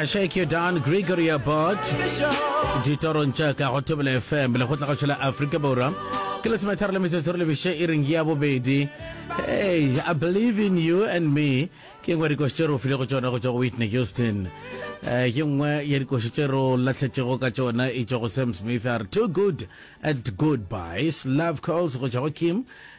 I shake you down Gregory Abbott ditorong tša ka go tebele fm le go tla go šela afrika borwa ke le semetharo le metsotso re lebiše e reng ya bobedi hey i believe in you and me ke ngwe dikoši tše re o file go tšona go tšwa go whitney houston um ke nngwe ya dikoši tše re lahletšego ka tšona e tšwa go sam smith a re too good at goodbyes love calls go tšwa go kim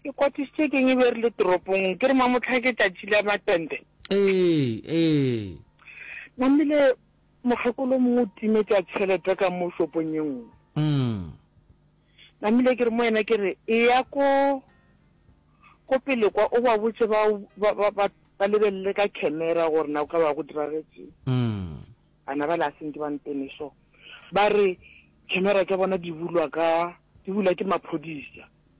Ke kwatišitše ke eng e be re le toropong? Ke re mamotlha ke tšatši la matente. Ee, ee. Namile mokgekolo mongwe o timetša tšhelete ka mo shopong ye nngwe. Mm. Namile ke re mo yena ke re e ya ko ko pele kwa o ba botše ba ba ba ba ba lebelele ka camera gore na o ka ba go diragetseng. Mm. Bana ba la sentse ba ntene so. Ba re camera tša bona di bulwa ka di bulwa ke maphodisa.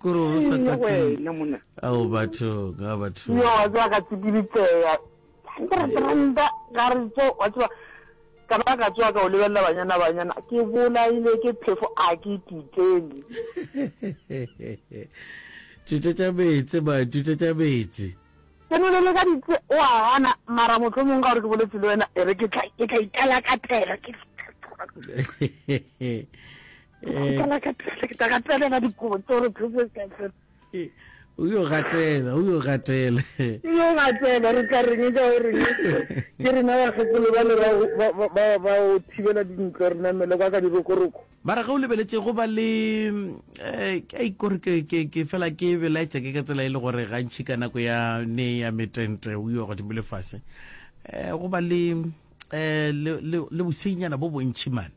Ke re o re sa ka tlung. Ao batho ga batho. Yo wa tswa ka tsipilitseya. Ke re trenda ga re tso wa tswa ka ba ka tswa ka o lebella banyana banyana ke bola ile ke phefo a ke titeni. Tuta tsa betse ba tuta tsa betse. Ke no le ka ditse o a gana mara motho mong ga re ke boletse le wena e re ke tla ke tla itala ka tela ke. o yo gatela o yo gatela yo gatela re tla reng ka o reng ke rena bakgekolo ba le ba o thibela dintlo re namele kwa ka dirokoroko ba re ge o lebeletse go ba le eh, ka ikore ke fela ke belaetsa ke ka tsela e le gore gantšhi ka nako ya ne ya metente o yo godimo le fase um go ba le um le bosenyana bo bontšhi mane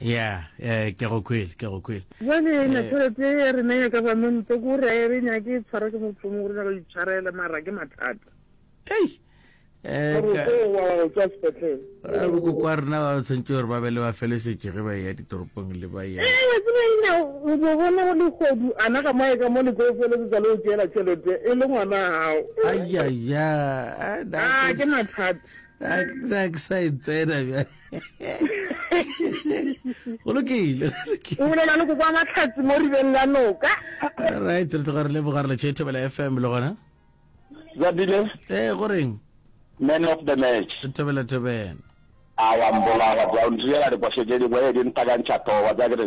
ya eh, ke go kwele ke go kwele jale ena eh. tšhelete e re naya ka bamente ko gore a re nyake e tshwara ke motho mongwe gore nyaka itshwarela mara ke mathata ei eh, bokoko a rena ba tshwanetse gore ba be le ba felesetse ge ba ya ditoropong le ba ya o bo bona go legodu ana ga mae ka mo le tlo felesetsa le o tseela tšhelete e le ngwana gago ayaya ke mathata a ke sa e tsena bjale go lokile o bolela le go kwa matlhatsi mo ribeng la noka right re tloga re leboga re letšhe thobela fm le gona zabile ee go reng man of the match thobela thobela a wa mbolaya bja o ntirela diphošo tše dingwe e di ntakantšha towa tsa kere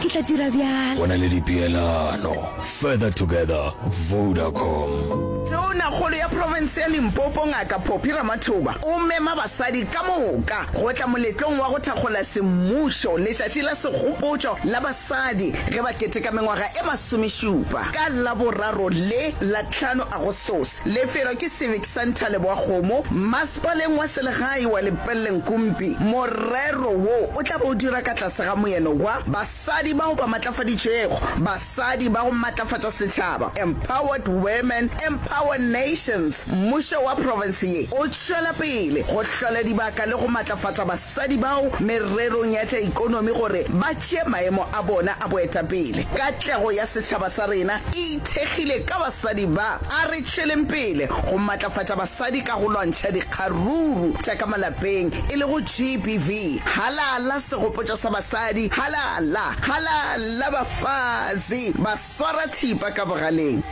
Ke tla dira bjalo. Go na le dipeelano. Further Together, Vodacom. Tonakgolo ya profense ya Limpopo Ngaka Phophi Ramathoba o mema basadi ka moka go tla moletlong wa go thakgola semmušo letšatši la segopotšo la basadi ge ba keteka mengwaga e masomešupa ka Laboraro le la tlhano Agostose. Lefelo ke Civic Santa Leboakgomo, Mmasepaleng wa Selegae wa Lepellenkumpi, morero wo o tla be o dira ka tlase ga moeno wa Basadi bao ba Matlafaditšwego, Basadi ba go Matlafatša Setšhaba, Empowered Women, Empower Nations. Mmušo wa profense ye o tšwela pele go hlola dibaka le go matlafatša basadi. sadi bao mererong ya tša ekonomi gore ba tšee maemo a bona a boetapele. Katlego ya setšhaba sa rena e ithekgile ka basadi ba. A re tšweleng pele go matlafatša basadi ka go lwantšha dikgaruru tša ka malapeng e lego GBV. Halala segopotšo sa basadi, halala, halala bafazi ba swara thipa ka bogaleng.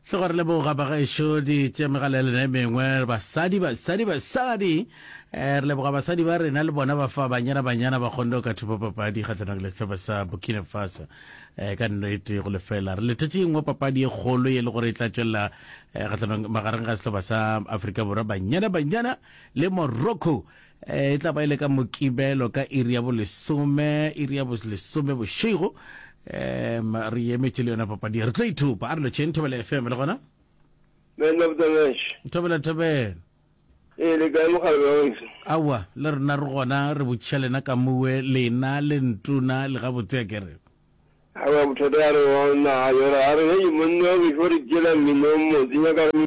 Hle gore le boga bagešo di tše megalelena e mengwe basadi basadi basadi eh, re leboga basadi ba rena le bona ba fa banyana banyana ba kgonne ka thupa papadi kgatlhanong le sehlopha sa Burkina Faso eh, ka nnete go lefela re letetše engwe papadi e kgolo e le gore e tla tšwelela eh, kgatlhanong magareng ga sehlopha sa Afrika Borwa banyana banyana le Morocco e tla ba e le ka mokibelo ka iri ya bolesome iri ya bolesome bošego um re emetše le yona papadi re tlo ithupa a re lotšheng thobela fm le gona Man of the match. thobela thobela E le kae mogala wa weso? aowa le rena re gona re botšiša lena ka muwe lena le ntuna le gabotse a kere Ha ba bothata ya re wa naga yora. A re hey monna wa weso re tšela mmino o motse nyaka re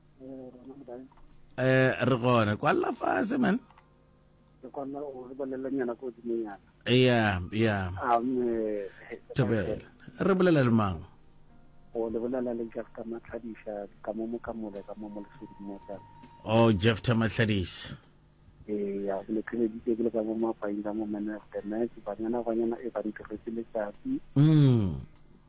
eh re gona kwa la fase man ke kona o re bolela nyana ko dimo nyana yeah yeah amen thabela re bolela le mang o le bolela le Jeff ka matlhadisa ka mo mokamole ka mo mo lesedimo tsa oh Jeff ta matlhadisa eh ya le credit ke le ka mo mapainda mo management banyana banyana e ba ntiretse letsatsi mm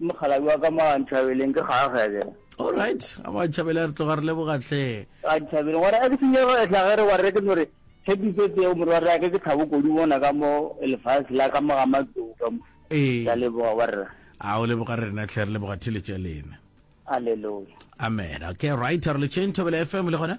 Mokgalabje wa ka mo a Ntšhabeleng ke kgaga ke. All right, a mo a Ntšhabeleng a re tloga re leboga hle. A Ntšhabeleng wa re a ke senyego etla ge re wa re ke no re Happy birthday o morwa re ke ke Thabo Kodi bona ka mo lefase la ka mo ga matlou ka mo. Ee. Ke a leboga wa re. A o leboga rena hle re leboga theletše ya lena. Alleluia. Amen. Okay, right, a re le tšeng Thobela FM le gona.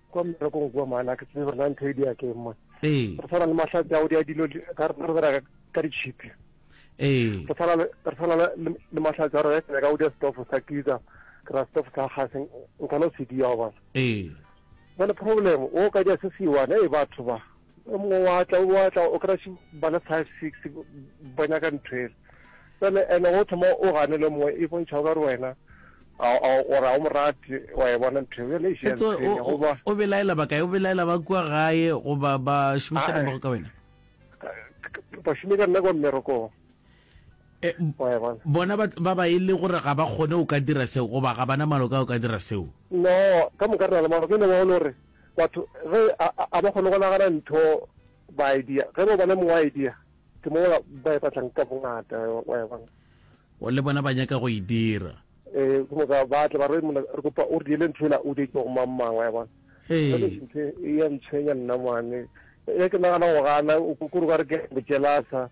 kwa mmerekong kua mane a ke tsebe gore na ntho e dia ke eng mone ee re tshwana le mahlatse a o dia dilo di- ka rena re bereka ka ditšhipi ee re tshwana le- re tshwana le- le le mahlatse a rena ka o dia stofo sa kitsa ke ra stofo sa gase nkana o se dia wa bona ee jale problem o ka dia se se one e batho ba o mongwe wa tla wa tla o kry bana five six ba nyaka ntho ele tsone ene o thoma o gane le mongwe e bontšha o ka re wena gore a o morate wa e bona ntho eo goba o belaela ba kae o belaela ba kua gae goba ba šomiša nomoro ka wena ba šome ka nna kwa mmerekong eh, bona ba ba e le gore ga ba kgone o ka dira seo goba ga bana maloka o ka dira seo no ka moka rena le maloka e ne ba gore Batho ge a, a, a ba kgone go nagana ntho ba idea. Ge ba bona mongwe idea, ke mo ba e batlang ka bongata, wa e bona. O le bona ba nyaka go e dira. Ee, ke moka ba tla ba re, Monna, re kopa o re diele ntho ela o di itšego mang mang, wa e bona. Jwale ntho e ya ntshwenya nna mane. Ge ke nagana go gana, kore ba re ke bojelasa.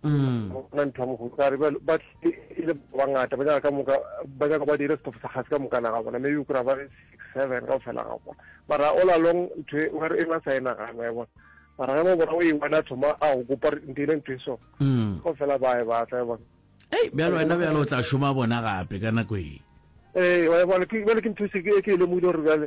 Ga go na ntho ya mohuta a re bjalo. Ba tlile e le ba bangata, ba nyaka ka moka ba nyaka ba dire setofo sa kgase ka mokana ga bona, maybe o kry-a ba le six seven ka go fela ga bona. Mara all along ntho e ba re e ba sa e nagana wa e bona. Mara ge ba bona o e one a thoma a go kopa re nteile ntho e so, go fela ba e batla wa e bona. Hei, bjalo wena bjalo o tla šoma bona gape ka nako e. Ee, wa e bona, ke bjale ke ntho e se e ke e lemogile gore bjale.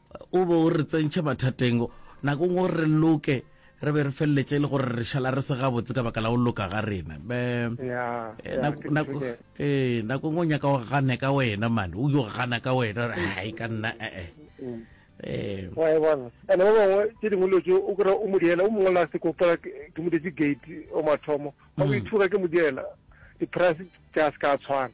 O be o re tsentšhe mathateng nako nngwe gore re loke re be re feleletše e le gore re šala re se gabotse ka baka la go loka ga rena be ee nako nngwe o nyaka go gane ka wena mane o yo gana ka wena gore ga e ka nna ee ee ande ba bangwe tše dingwe dilo tse o kry-a o modiela o mongwe la se kopela ke modetse gate o mathomo ba o ithuga ke modiela di-price tša se ka tshwana